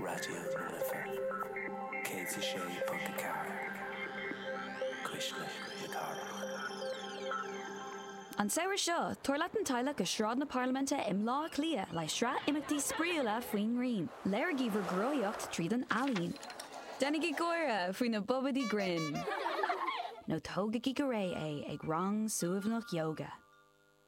Raidió na Life 106.4 Cuisle na Cathrach. An samhradh seo, tabhair leat an teaghlach go Sráid na Parlaiminte i mBleá Cliath le sraith imeachtaí spraíúla faoin ngrian. Léirigí bhur gcruthaitheacht tríd an ealaín. Déanaigí gáire faoi na bobaidí grinn. Nó tógaigí go réidh é ag rang suaimhneach ióga.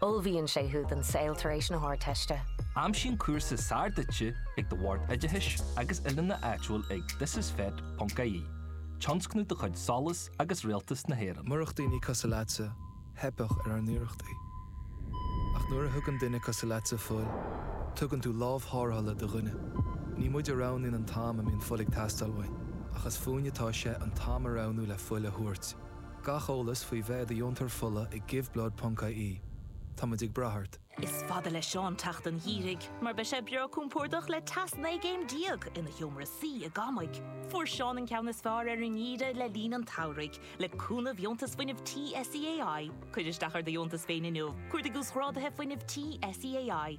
Ullmhaíonn sé thú don saol tar éis na hArdteiste. Aimsigh an cúrsa is fearr duitse ag do Bhord Oideachais agus Oiliúna áitiúil ag ThisIsFET ponc IE, tionscnamh de chuid SOLAS agus Rialtas na hÉireann. Murach daoine cosúil leatsa, theipfeadh ar ár n-iarrachtaí. Ach nuair a thugann duine cosúil leatsa fuil, tugann tú lámh thárrthála do dhuine. Ní muid a roghnaíonn an t-am a mbíonn fuil ag teastáil uainn, ach is fúinne atá sé an t-am a roghnú le fuil a thabhairt. Gach eolas faoi bheith i do dheontóir fola ag giveblood.ie. Táimid ag brath ort. Is fada le Seán teacht an Gheimhridh mar beidh sé breá compordach le teas 19 gcéim ina sheomra suí i gCamaigh. Fuair Seán an ceann is fearr ar an nGeimhreadh le linn an tsamhraidh le cúnamh Dheontas Fuinnimh Tí SEAI. Cuir isteach ar do dheontas féin inniu, cuardaigh Uasghráduithe Fuinnimh Tí SEAI.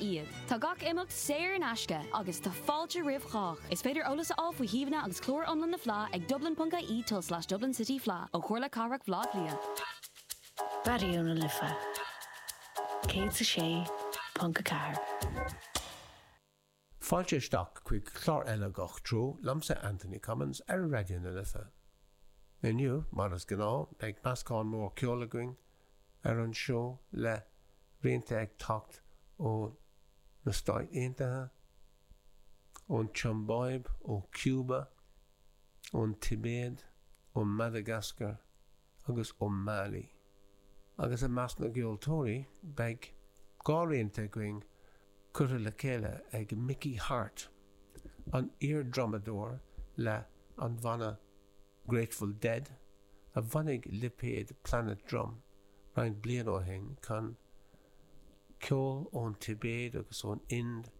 iad. Tá gach imeacht saor in aisce agus tá fáilte roimh chách. Is féidir eolas a fháil faoi shuíomhanna agus clár iomlán na Fleá ag dublin.ie tulslais dublin city fleadh ó Chomhairle Cathrach Bhleá Cliath. Raidió na Life 106.4. Fáilte isteach chuig clár eile Gach Treo liomsa Anthony Cummins ar Raidió na Life. Inniu, mar is gnáth, beidh meascán mór ceoil againn, ar an seó le rianta ag teacht ó na Stáit Aontaithe, ón tSiombáib, ó Chiúba, ón Tibéid, ó Mhadagascar agus ó Mhailí. Agus i measc na gceoltóirí beidh dhá rianta againn curtha le chéile ag Mickey Hart, an iar-drumadóir le an bhanna Grateful Dead, a bhunaigh lipéad Planet Drum roinnt bliana ó shin, chun ceol ón Tibéid agus ón Ind,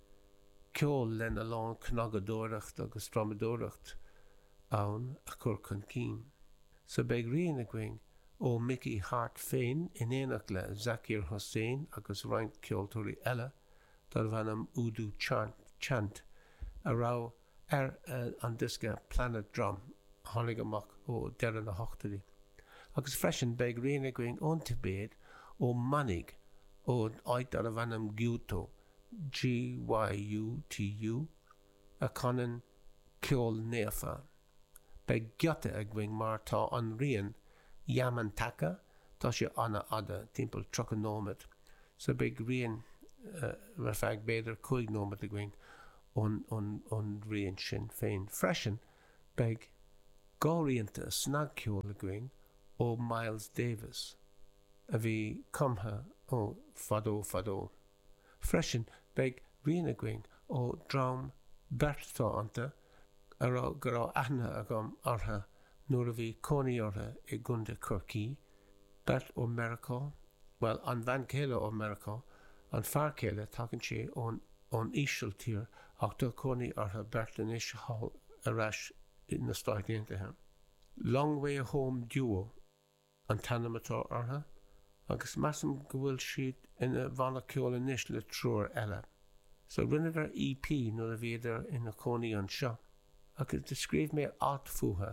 ceol lena lán cnagadóireacht agus drumadóireacht ann, a chur chun cinn. So beidh rian againn ó Mickey Hart féin in éineacht le Zakir Hussain agus roinnt ceoltóirí eile darb ainm Udu Chant a raibh, Ar an diosca Planet Drum a tháinig amach ó deireadh na hochtóidí, agus freisin, beidh rian againn ón Tibéid ó mhanaigh ó áit darbh ainm Gyuto, G-y-u-t-u, a chanann ceol naofa. Beidh giota againn mar tá an rian Yamantaka, tá sé an-fhada, timpeall 30 nóiméad, so beidh rian ar feadh b'fhéidir 5 nóiméad againn an rian sin féin freisin, beidh dhá rianta snagcheoil againn ó Miles Davis, a bhí cumtha ó fadó fadó. Freisin, beidh rian againn ó dream beartánta a raibh go raibh aithne agam orthu nuair a bhí cónaí orthu i gContae Chorcaí, Beirt ó Mheiriceá, bhuel, an bhean chéile ó Mheiriceá, an fear céile, tagann sé ón, ón Ísiltír ach tá cónaí orthu beirt anois thall, ar ais i, na Stáit Aontaithe. Long Way Home Duo an t-ainm atá orthu agus measaim go bhfuil siad ina bhanna ceoil anois le triúr eile. So rinneadar EP nuair a bhíodar ina cónaí anseo agus do scríobh mé alt fúthu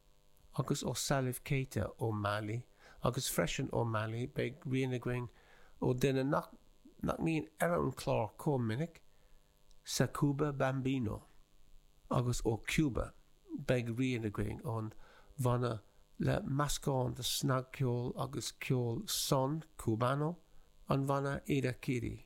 agus ó Salif Keita ó Mailí agus freisin ó Mailí beidh rian againn ó duine nach nach mbíonn ar an chlár comh minic, Sékouba Bambino, agus ó Cuba beidh rian againn ón bhanna le meascán de snagcheol agus ceol Son Cubano, an bhanna Irakere.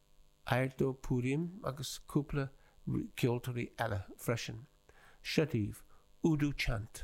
Airto Purim agus cúpla ceoltóirí eile freisin, Seo daoibh, Udu Chant!